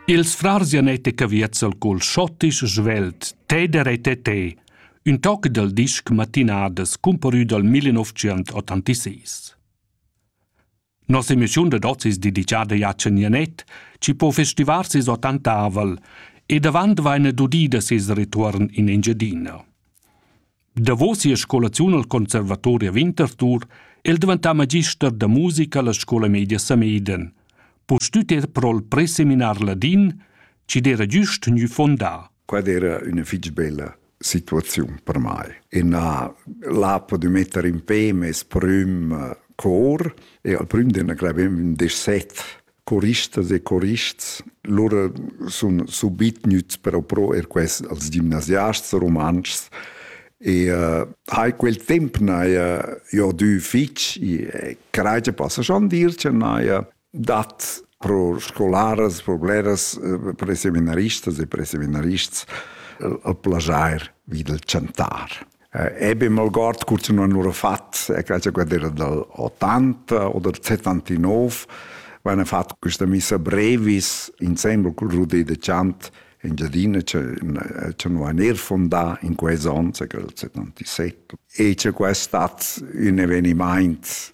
Ils frars Janet e Caviezel col schottisch svelt Teder e Tete, ün toc dal disc Matinadas cumparü dal 1986. Nos emischiun dad hoz es dedicada a Can Janet, chi po festivar ses ottantavel e davant vaina dudida ses retuorn in Engiadina. Davos sia scolaziun al Conservatori a Winterthur è el daventà magister da musica alla scola media Sameden. Pustüt er pro'l preseminar ladin, chi'd era güst gnü fondà. Quella era üna fich bella situaziun per mai. E na, là podu metter in pe mes prüm cor e al prüm d'ena clavem un desset choristas e chorists lura sun subit gnüts però pro er quest als gimnasiasts rumantschs e uh, hai quel temp n'haja jo dü fich e craja passa schon dir che n'haja dat pro scolaras, pro bleras, eh, pro seminaristas e pro seminarists eh, al plajair vi del chantar. Eben mal guard kurz non nur fat, e quella quadra dal 80 oder 79, wenn fat questa missa brevis insieme col Rudé de Chant in Giardina c'è un aner fondà in quei zon, c'è quel 77. E c'è questo un eveniment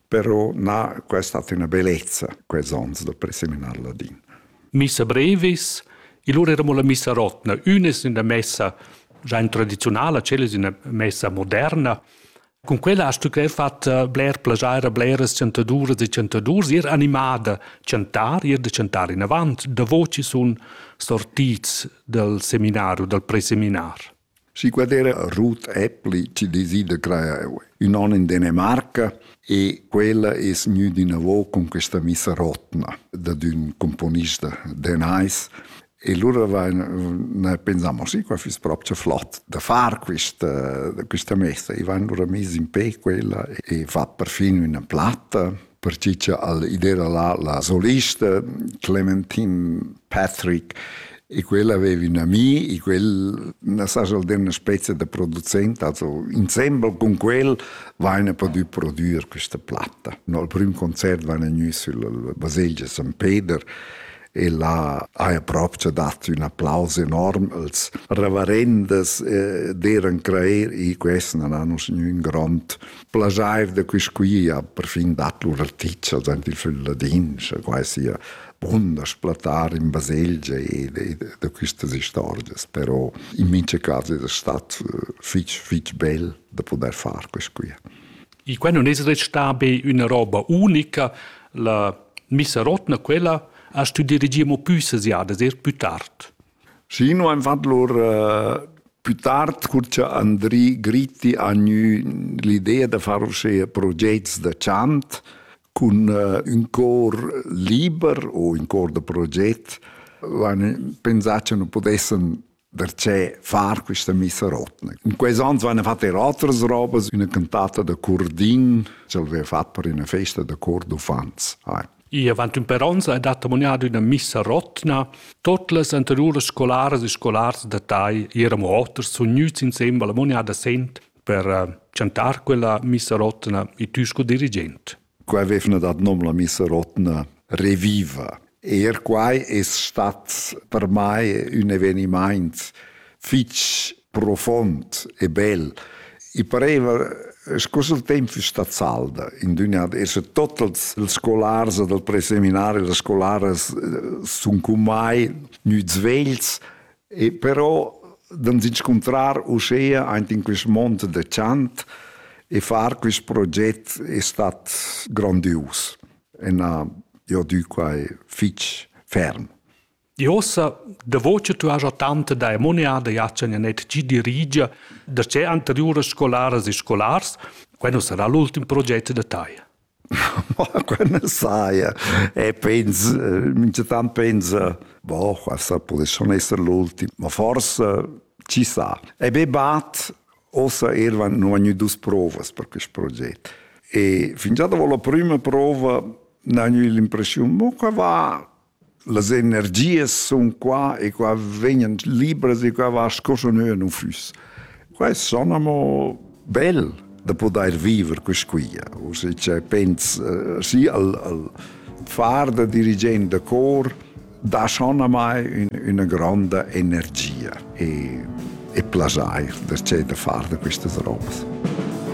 però na questa hat una bellezza quels ons da preseminar ladin. Missa brevis, il lur eramo la missa rotna, unes in la messa già in tradizionala, celes in la messa moderna. Con quella hast du gleich fatto bler plagiare a bleras chantaduras e chantadurs, ir animada chantar, ir da chantar in avant, da voci sun sortids dal seminario, dal preseminar. Si quadera Ruth Appli ci desida crear ün on in Danimarca e quella es gnüda inavo cun questa missa rotna dad ün componista danais e lura vain pensamo sì qua füss propcha flot da far quista quista messa e vain lura mis in pe quella e fat perfin üna platta pertgi cha al id era la, la solista Clementine Patrick e quella aveva un ami e quel na sa schon dir una spezia da producent, also insieme con quel vaina potuto produrre questa platta. Al primo concerto vaina gnü sulla baselgia San Peter e là ha proprio dato un applauso enorm als reverendes eh, d'eran creer e questi non hanno un grond plaschair da quist quia perfin dat lur articha dant il fil ladin, scha quai sia bunda splatar in baselgia e da quistas istorgias, però in mincha cas es stat fich fich bel da pudair far quist quia. I qua non es restà be üna roba unica, la missa rotna quella ha stü dirigir mo pü sesiadas, eir plü tard. Schi nu aim fat lur pü tard cur cha Andri Gritti ha gnü l'idea da far uschea progets da chant cun ün cor liber u ün cor da proget l'hain pensà cha nu pudessan darchè far quista missa rotna. In quels ans vaina fat eir otras robas, üna cantata da Curdin ch'el vaiva fat per üna festa da cor d'uffants. I avant ün per ons ha dat ammoniado üna missa rotna. Tot las anteriuras scolaras e scolars da Tai eran amo oters sun gnüts insembel ammoniada sent per eh, chantar quella missa rotna e tü sco dirigent. Qua vevna dat nom la missa rotna Reviva. Er quai es stat per mai ün evenimaint fich profond e bel. I pareva sco se il temp fiss stat salda in d'üna ad esser totals els scolars dal preseminario, las scolaras sun con mai gnüts vegls e però d'ans inscuntrar uschea aint in quist mond da chant e far quist proget è stat grandius e n'ha jo dü quai fich ferm. Di ossa, davo che tu has tanta da emoniada jatschen ja net gi dirigia da che anteriuras scolaras e scolars, quando sarà l'ultim progetto da tai? quella saia e penso minchatant pensa boh questa pudess schon essere l'ultimo ma forse ci sa e be bat ossa elvan non ha dus provas per questo progetto e fingià dopo la prima prova ne ho l'impressione mo che va Las energias sun qua e qua vegnan libras e qua va sco scha nua nun füss. Qua es son amo bel da pudair viver quist quia. O se cioè pens eh, sì al, al far da dirigent da cor dà schon a mai ün, üna gronda energia e, e plajair da, cioè, da far da quistas robas.